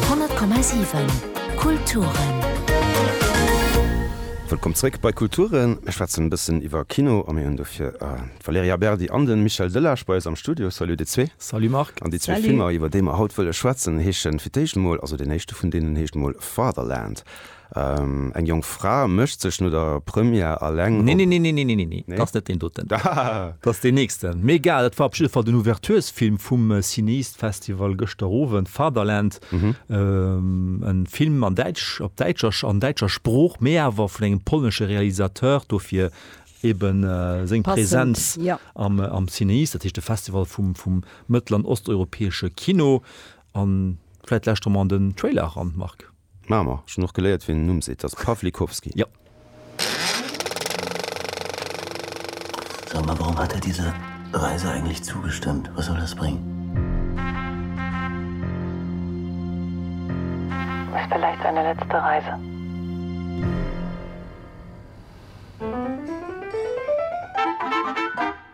100,7 Kulturen. Wëllkomm zréck bei Kulturen. Mir schwätzen e bëssen iwwer Kino a mir hunn dofir d'Valerija Berdi an de Michel Delage bei eis am Studio. Salut dir zwee. Salut Marc. An déi zwee Filmer, iwwer déi mer haut wëlle schwätzen, heeschen fir d'éischt emol, also deen éischte vun deenen heescht emol Fatherland. Eng jonk Fra mécht sech no der Première eleng op. Neeneeneeneeneenee, dat ass net deen doten. Dat ass deen nächsten. Mee egal, dat war op jidde Fall den Ouverturesfilm vum Cineast Festival gëschter Owend, Fatherland. En Film an däitsch, op däitscher, an däitscher Sprooch, mee awer vun engem polnesche Realisateur, dofir eben seng Präsenz am Cineast, dat heescht de Festival vum mëttel an osteuropäesche Kino. An vläit lauschteren mer an den Trailer eran, Marc. Maache mer. Ech hunn och geléiert, wéi en Numm seet. Ass Pawlikowski. Jo. Sag mal, warum hat er diese Reise eigentlich zugestimmt? Was soll das bringen? Ist vielleicht seine letzte Reise.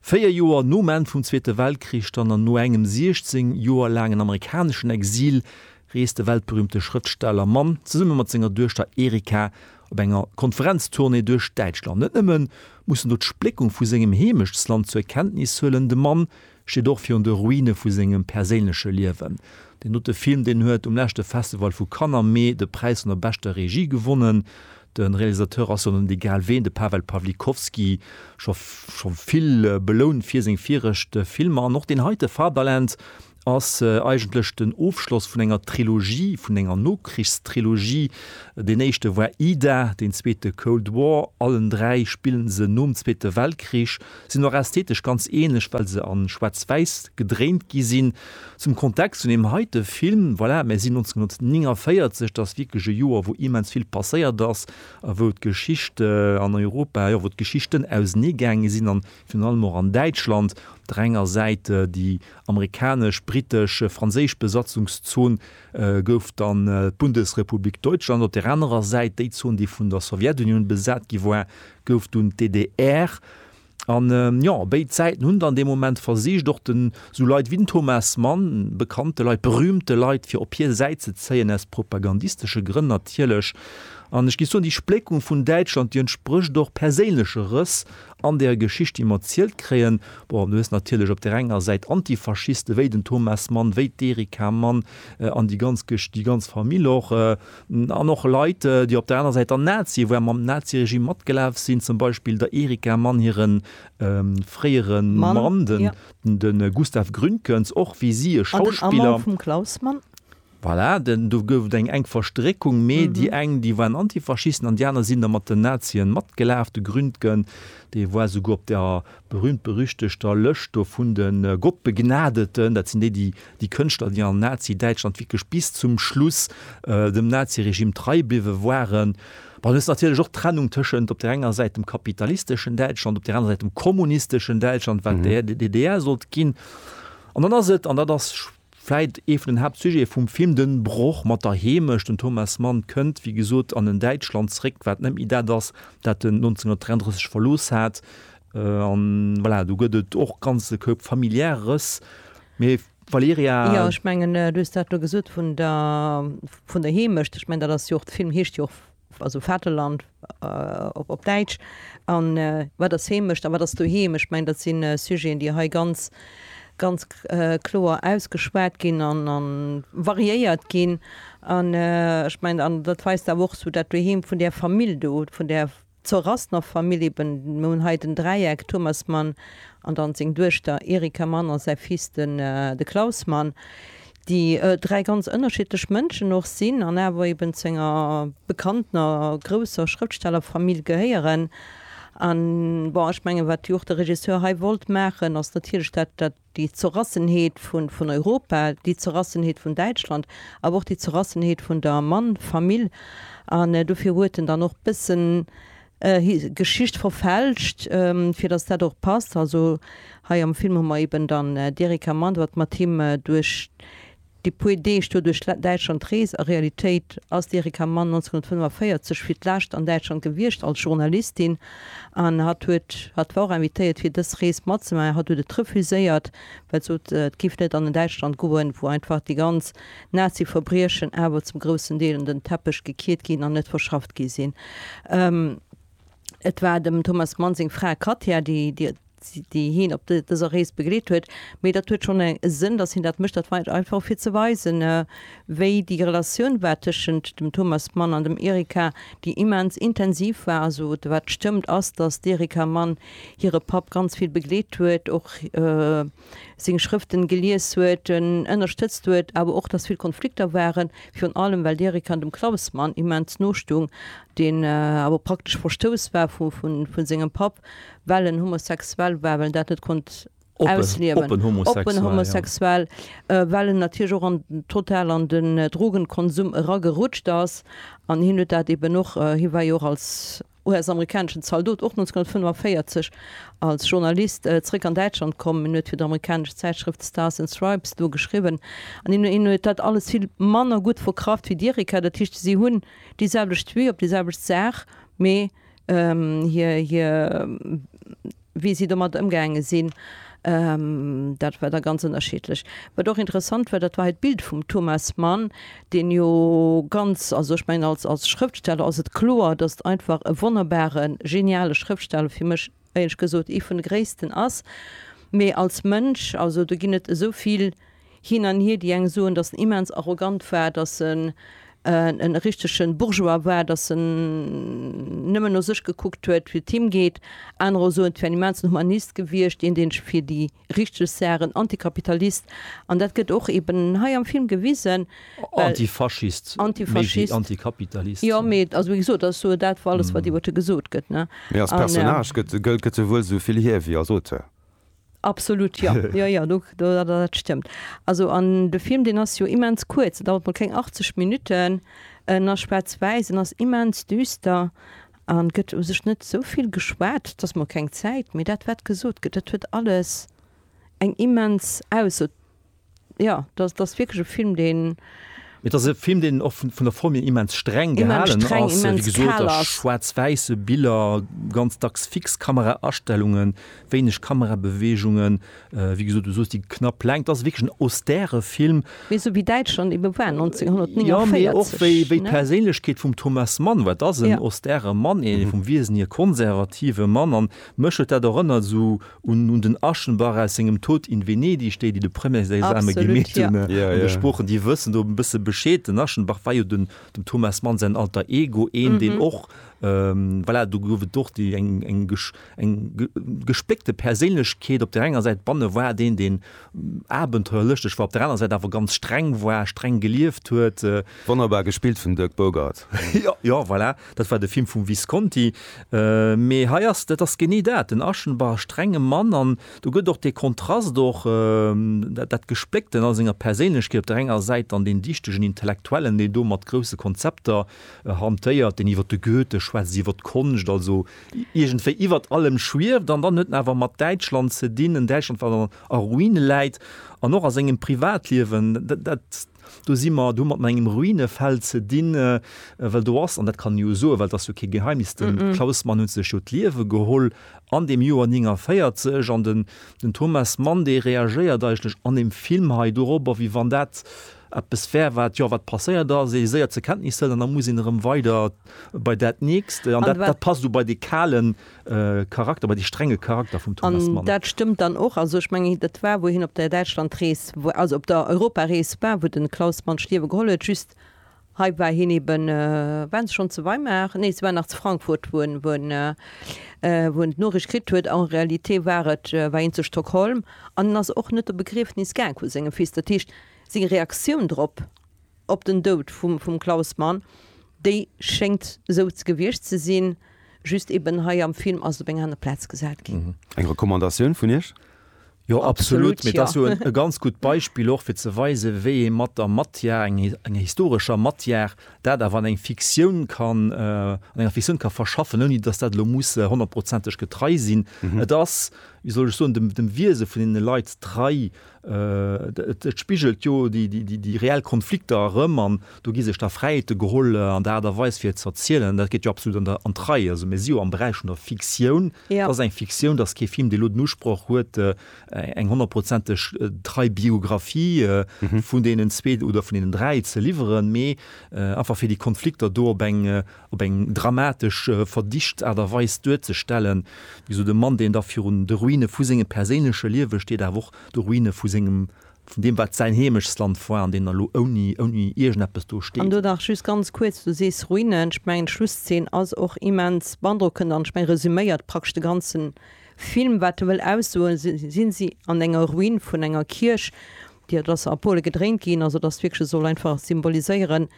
Véier Joer nom Enn vum Zweete Weltkrich dann an no engem 16 Joer laangen amerikaneschen Exil reest de weltberüümte Schrëftsteller Mann zesumme mat senger Duechter Erika op enger Konferenztournée duerch Däitschland. Net nëmme muss en do d'Spléckung vu sengem Heemechtsland zur Kenntnis huelen, de Mann steet och virun de Ruine vu sengem perséinleche Liewen. Deen dote Film, deen huet um leschte Festival vu Cannes am Mee de Präis vun der beschter Regie gewonnen. De Realisateur ass jo net egal ween, de Pawel Pawlikowski, scho scho vill belount fir seng viregt Filmer an och deen heite Fatherland ass eigentlech den Ofschloss vun enger Trilogie, vun enger Nokrichstrilogie. Deen éischte war Ida, deen zweete Cold War. Allen dräi spillen se nom Zweete Weltkrich, sinn och ästhetesch ganz ähnlech, well se a Schwaarz-Wäiss gedréint gi sinn. Zum Kontext vun deem heite Film, voilà, mir sinn 1949, dat ass wierklech e Joer, wou immens vill passéiert ass a wou d'Geschicht an Europa, jo, wou d'Geschichten auseneegaange sinn an virun allem och an Däitschland, op der enger Säit déi amerikanesch, britesch, franséisch Besatzungszon gouf dann d'Bundesrepublik Deutschland, op där anerer Säit déi Zon, déi vun der Sowjetunioun besat gi war, gouf dunn d'DDR. An jo, béid Säiten hunn dann dee Moment versicht, och den esou Leit wéi den Thomas Mann, bekannte Leit, berühmte Leit, fir op hir Säit ze zéien, aus propagandistesche Grënn natierlech. An ech giff soen, déi Spléckung vun Däitschland, déi entsprécht och perséinleche Rëss an der Geschicht, déi mer erzielt kréien. Bon, du hues natierlech op där enger Säit Antifaschiste wéi den Thomas Mann, wéi d'Erika Mann an déi ganz Gesch-, déi ganz Famill och. An och Leit, déi op der aner Säit der Nazien, wou awer mam Naziregime matgelaf sinn, zum Beispill der Erika Mann hire fréiere Mann, de Gustav Gründgens, och wéi si e Schauspiller. An den Amant vum Klaus Mann. Voilà, do gouf et eng enk Verstréckung, mee déi eng, déi waren Antifaschisten an déi aner sinn da mat den Nazien matgelaf. De Gründgen, dee war esouguer op der berühmt-berüchtegter Lëscht do vun de Gottbegnadeten, dat sinn déi, déi Déi Kënschtler, déi an Nazi-Däitschland wierklech bis zum Schluss dem Nazi-Regime trei bliwwe waren. Dann ass natierlech och d'Trennung tëschent op där enger Säit dem kapitalisteschen Däitschland, op där anerer Säit dem kommunisteschen Däitschland, wat d'EA, déi DDR sollt ginn. An dann ass et, an dat ass vläit ee vun den Haaptsujete vum Film, de Broch mat der Heemecht. Den Thomas Mann kënnt, wéi gesot, an en Däitschland zréck, wat net méi dat ass, dat en 1933 verlooss hat. A voilà, do gëtt et och ganz e Koup familiär Rëss. Mee Valerija. Jo, ech mengen, du hues dat do gesot vun der, vun der Heemecht. Ech mengen, dat ass jo och, de Film heescht jo och, also Vaterland op Däitsch. A wat ass Heemecht a wat ass doheem? Ech mengen, dat si Sujeten, déi hei ganz, ganz kloer ausgeschwat ginn a variéiert ginn. An ech mengen, an dat weist awer och esou dat Doheem vun där Famill do, vun där Zur Rasnov Familje be mer hunn hei den Dräieck Thomas Mann an dann seng Duechter Erika Mann a säi Fils den de Klaus Mann, déi dräi ganz ënnerschiddlech Mënschen och sinn an awer eben zu enger bekanntener grousser Schrëftstellerfamill gehéieren. An bon, ech mengen, wat jo och de Regisseur hei wollt maachen, ass natierlech dat, dat. déi Zerrassenheet vun Europa, déi Zerrassenheet vun Däitschland, awer och déi Zerrassenheet vun der Mann-Famill. An dofir huet en dann och bëssen Geschicht verfälscht, fir datt dat och passt. Also hei am Film hu mer eben dann d'Erika Mann, wat mat him duerch. Déi puer Deeg duer duerch Däitschland Rees a Realitéit ass d'Erika Mann 1945 fir d'lescht an Däitschland gewiescht als Journalistin an hatt huet hatt war och invitéiert fir dës Rees matzemaachen. Hatt huet et refuséiert well sot et giff net an en Däitschland goen wou einfach déi ganz Nazi-Verbriechen awer zum groussen Deel un den Teppech gekiert ginn an net verschafft gi sinn. Et war dem Thomas Mann seng Fra Katja déi déi hien op dëser Rees begleet huet. Mee dat huet schonn e Sënn, datt hien dat mécht. Dat war et einfach, fir ze weisen, wéi déi Relatioun war tëschent dem Thomas Mann an dem Erika, déi immens intensiv war. Also wat stëmmt, ass, datt d'Erika Mann hire Papp ganz vill begleet huet, och. seng Schrëften gelies huet, en ënnerstëtzt huet, awer och dass vill Konflikter waren, virun allem well d'Erika dem Klausmann immens no stung, deen awer praktesch verstouss war vun sengem Papp, well en homosexuell war, well en dat net konnt ausliewen, oppen homosexuell, well en natierlech och total an den Drogenkonsum eragerutscht ass an hien huet dat eben och, hie war jo och als. US-amerikaneschen Zaldot, och 1945 als Journalist zeréck an Däitschland komm. Hien huet fir d'amerikanesch Zäitschrëft Stars and Stripes do geschriwwen. An hien hien huet dat alles vill manner gutt verkraft wéi d'Erika. Dat heescht, si hunn déi selwecht Vue op déi selwecht Saach, mee hir, hir, Wéi si domat ëmgaange sinn, dat war da ganz ënnerschiddlech. Wat och interessant war, dat war hei d'Bild vum Thomas Mann, deen jo ganz, also ech mengen als, als Schrëftsteller ass et kloer, datt et einfach e wonnerbare, geniale Schrëftsteller, fir mech éierlech gesot ee vun de gréissten ass, mee als Mënsch, also do ginn et esou vill Hin an hier, déi eng soen, datt en immens arrogant war, datt en e richtege Bourgeois war, datt en nëmmen no sech gekuckt huet, wéi et him geet. Anerer soen, et wär en immensen Humanist gewiescht, een, deen sech fir déi richteg Saachen, en Antikapitalist, an dat gëtt och eben hei am Film gewisen, well. Antifaschist, méi wéi Antikapitalist. Jo, mee also, wéi gesot, dat ass sou dat alles, wat iwwer e gesot gëtt, ne? Mee als Personnage gëtt e wuel esou vill hier wéi als Auteur. Absolut, jo. Jo, jo, do, do, dat, dat stëmmt. Also, an de Film, deen ass jo immens kuerz, en dauert mol keng 80 Minutten. En ass schwaarz-wäiss, en ass immens düster an et gëtt u sech net esou vill geschwat. Et ass mol keng Zäit, mee dat, wat gesot gëtt, dat huet alles eng immens Ausso. Ja, dass dass wierklech e Film deen. Et ass e Film deen och vun vun der Form hier immens streng gehalen ass, wéi gesot ass schwaarz-wäisse Biller, ganz dacks fix Kameraastellungen, wéineg Kamerabeweegungen, wéi gesot du soos déi knapp Längt. Et ass wierklech en austere Film. Mee esou wéi Däitschland ebe war 1949. Jo, mee och wéi wéi d'Perséinlechkeet vum Thomas Mann war. Et ass en austere Mann, ee vum Wiesen hier konservative Mann, an mech huet dat erënnert esou. un un den Aschenbach aus sengem Tod in Venedig, déi déi de Premièresexame gemeet hunn an de Sproochen, déi wëssen do e bësse Bescheed. Den Aschenbach war jo den dem Thomas Mann säin Alter Ego, een deen och, voilà, do gouf et och déi eng eng gesch eng gespléckte Perséinlechkeet, op där enger Säit banne war deen, deen abenteuerlëschteg war, op där aner Säit awer ganz streng war, streng gelieft huet. Wonnerbar gespillt vum Dirk Bogarde. Jo, voilà. Dat war de Film vum Visconti. Mee hei ass, dat ass genee dat, den Aschenbach, strenge Mann, an do gëtt och dee Kontrast, och dat Gespléckten a senger Perséinlechkeet, op der enger Säit dann deen dichtegen Intellektuellen, deen do mat grousse Konzepter hantéiert, deen iwwer de Goethe schwätzt, iwwer d'Konscht, also iergendwéi iwwer allem schwieft, an dann huet en awer mat Däitschland ze dinn, en Däitschland, wat a Ruine läit, an och a sengem Privatliewen, dat. Do si mer, do hu mer et mat engem Ruinefeld ze dinn, well do ass, an dat kann ee jo soen, well et ass jo kee Geheimnis, de Klaus Mann huet sech jo d'Liewe geholl an deem Joer 49 an den Thomas Mann, dee reagéiert eigentlech an deem Film hei dorobber, wéi wann dat eppes wär, wat, jo, wat passéiert ass, ee séier zur Kenntnis hëlt an da muss een erëm weider bei dat Nächst. An dat passt esou bei dee kalen. Charakter, bei dee strenge Charakter vum Thomas Mann. An dat stëmmt dann och. Also ech mengen, dat war, wou hien op der Däitschlandrees, also op der Europarees war, wou de Klaus Mann d'Stierwe geholl huet. Just hei war hien eben, waren se schonn zu Weimar? Nee, se waren nach zu Frankfurt, wou en, wou en, wou en d'Noriicht kritt huet. En réalité war et, war hien zu Stockholm an en ass och net op e Begriefnis gaang vu sengem Fils. Dat heescht, seng Reaktioun drop, op den Doud vum vum Klaus Mann, déi schéngt esou gewiescht ze sinn, just eben hei am Film ass et op eng aner Plaz gesat ginn. Eng Recommandatioun vun Iech? Jo absolut, mee et ass jo e ganz gutt Beispill och fir ze weisen, wéi ee mat der Matière, enger historescher Matière, dat awer an eng Fiktioun kann, an enger Fiktioun ka verschaffen, ouni datt dat elo muss honnertprozenteg getrei sinn. Et ass, wéi soll ech soen, dem Wiese vun deene Leit trei, Et spigelt jo déi reell Konflikter erëm an do gi sech da Fräiheete geholl an der Aart a Weis fir et ze erzielen. Dat geet jo absolut an d'Rei. Also mir si jo am Beräich vun der Fiktioun. Et ass eng Fiktioun, et ass kee Film, dee elo den Usproch huet, eng honnertprozenteg trei Biographie vun deenen zwee oder vun deenen dräi ze liwweren, mee einfach fir déi Konflikter do op eng op eng dramatesch verdicht Aart a Weis duerzestellen, wéi esou de Mann, deen da virun de Ruine vu sengem perséinleche Liewe steet, awer och de Ruine vu sengem, vun deem, wat säin Heemechtsland war, an deen elo ouni, ouni iergendeppes do An steet. do nach just ganz kuerz, Du sees Ruinen. Ech mengen, d'Schlusszeen ass och immens beandrockend an ech mengen, resuméiert praktesch de ganze Film, wat e wëll aussoen. Se si si an enger Ruin vun enger Kierch, déi, dat ass a Pole gedréint ginn, also et ass wierklech, soll einfach symboliséieren,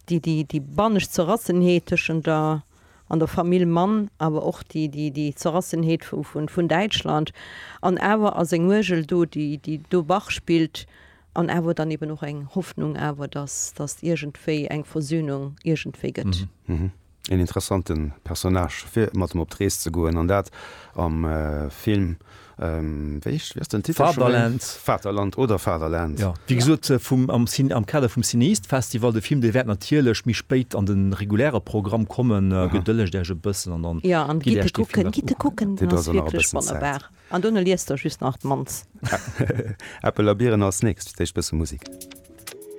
déi bannescht Zerrassenheet tëschent der an der Famill Mann, awer och déi Zerrassenheet vun Däitschland, an awer ass eng Uergel do, déi do Bach spillt, an awer dann eben och eng Hoffnung awer, datt iergendwéi eng Versöhnung iergendwéi gëtt. Een interessante Personnage fir mat em op d'Rees ze goen, an dat am Film Vaterland oder Fatherland. Wéi gesot am Kader vum Cinéiste Festival, de Film dee wäert natierlech méi spéit an de reguläre Programm kommen. Gedëllegt Iech e bëssen an dann gitt Iech dee Film och ukucken. Dir braucht nach e bëssen Zäit. An duerno liest Der just nach d'Mann's. Äppel a Biren als nächst. D'éischt bësse Musik.